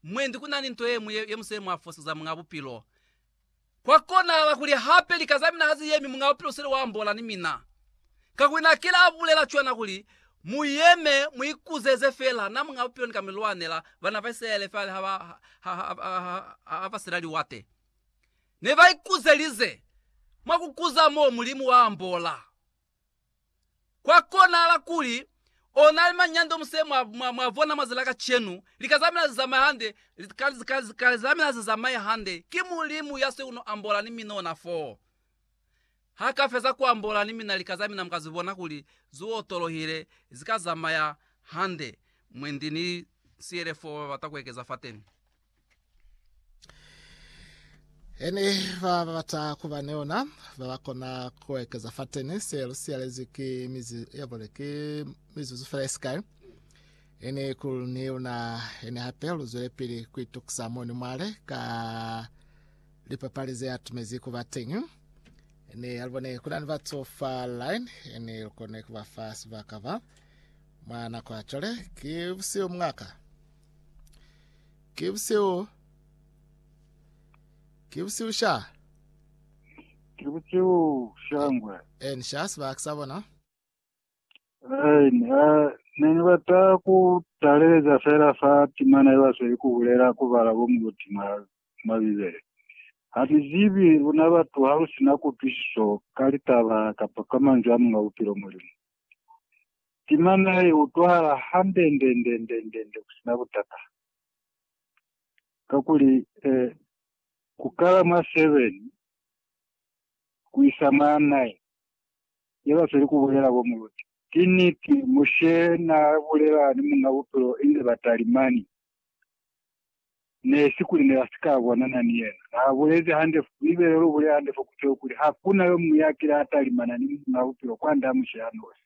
Mwendi ku na ni nto ye ñwi ye musele mwa foseza Muñ'a Bupilo. Kwa konahala kuli hape lika za mina ha zi yemi, Muñ'a Bupilo u sile wa ambola ni mina. Kakuli na kile a bulela cwana kuli, Mu yeme, mu ikuzeze fela, na Muñ'a Bupilo ni ka mi lwanela. Bana ba Isilaele fa kale ha ba sila liwate, ne ba ikuzelize. Mwa ku kuza mo, Mulimu wa ambola. Kwa konahala kuli ona ni manyando muse mwa, mwa, mwa vona mwa zilaka cenu, lika zamina zizamaye hande, lika, lika, lika zamina zizamaye hande. Ki Mulimu ya se uno ambola ni mina ona foo. Ha ka feza ku ambola ni mina lika zamina muka zibona kuli zu otolohile, zika zamaya hande. Mwendi ni siyele foo babata kuekeza fateni. Ene ba ba bata kuba ni ona ba ba kona ku ekeza fa teni se lu siyalezwi ki mizu ya bole ki mizuzu fela ye sikai. Ene ku ni una ene hape lu zwele pili ku itukisa moni mwale ka lipapali ze atumezi kuba teñi. Ene ya lubone kuna ni batu fa line ene lu kone kuba fa sibaka ba mwa nako ya cwale ki busihu mungaka. Ki busihu. Ki busihu sha. Ki busihu shangwe. En sha sibaka sa bona. Hey, uh, ne ni bata ku taleleza fela fa timana ye basweli ku bulela ku bala bo muluti mwa, mwa Bibele. Ha ni zibi luna batu ha lu sina kutwisiso ka litaba kapa ka manzwi a Munga Bupilo Mulimu. Timana ya i utwahala handendendendendende ku si na butata. Kakuli, eh, ku kala mwa seven ku isa mwa nine, ya ba feli ku bulela bo muluti. Ki niti, Mushe n'a bulela ni Muñ'a Bupilo inze ba talimani. ne si kuli ne ba si ka bonana ni yena. Na bulezi hande, Bibele lu bulela hande fo ku teo kuli, Ha ku na yo muñwi ya kile a talimana ni Muñ'a Bupilo kwand'a Mushe ya nosi.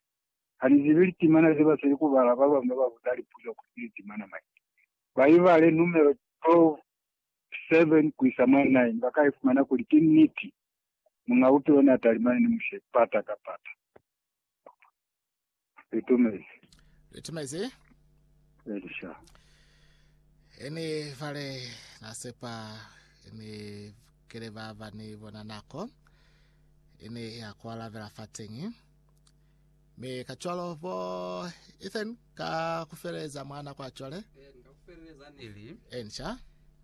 Ha ni zibi litimana ze ba seli ku bala, ba bañwi ba ba buza lipuzo kuli ki litimana mañi. Ba ibale numelo 12, 7-9, ba ka ifumana kuli ki niti, Muñ'a Bupilo n'a talimane ni Mushe pata ka pata. Litumezi. Litumezi. Elisha. Eni vale nasepa eni kele ba ba ni bona nako eni ya kwala vela fatengi me ka cwalo bo Ethan ka kufeleza mwana kwa cwale Neli. ensha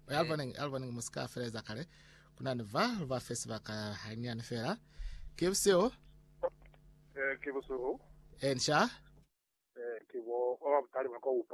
aliboneng aliboneng musika feleza kale Kuna ni va lu ba fe sibaka hanyani fela. Ke busihu. Eh, ke busihu. Eh, nxa. Eh, ke bo ba butali ba kwa upa.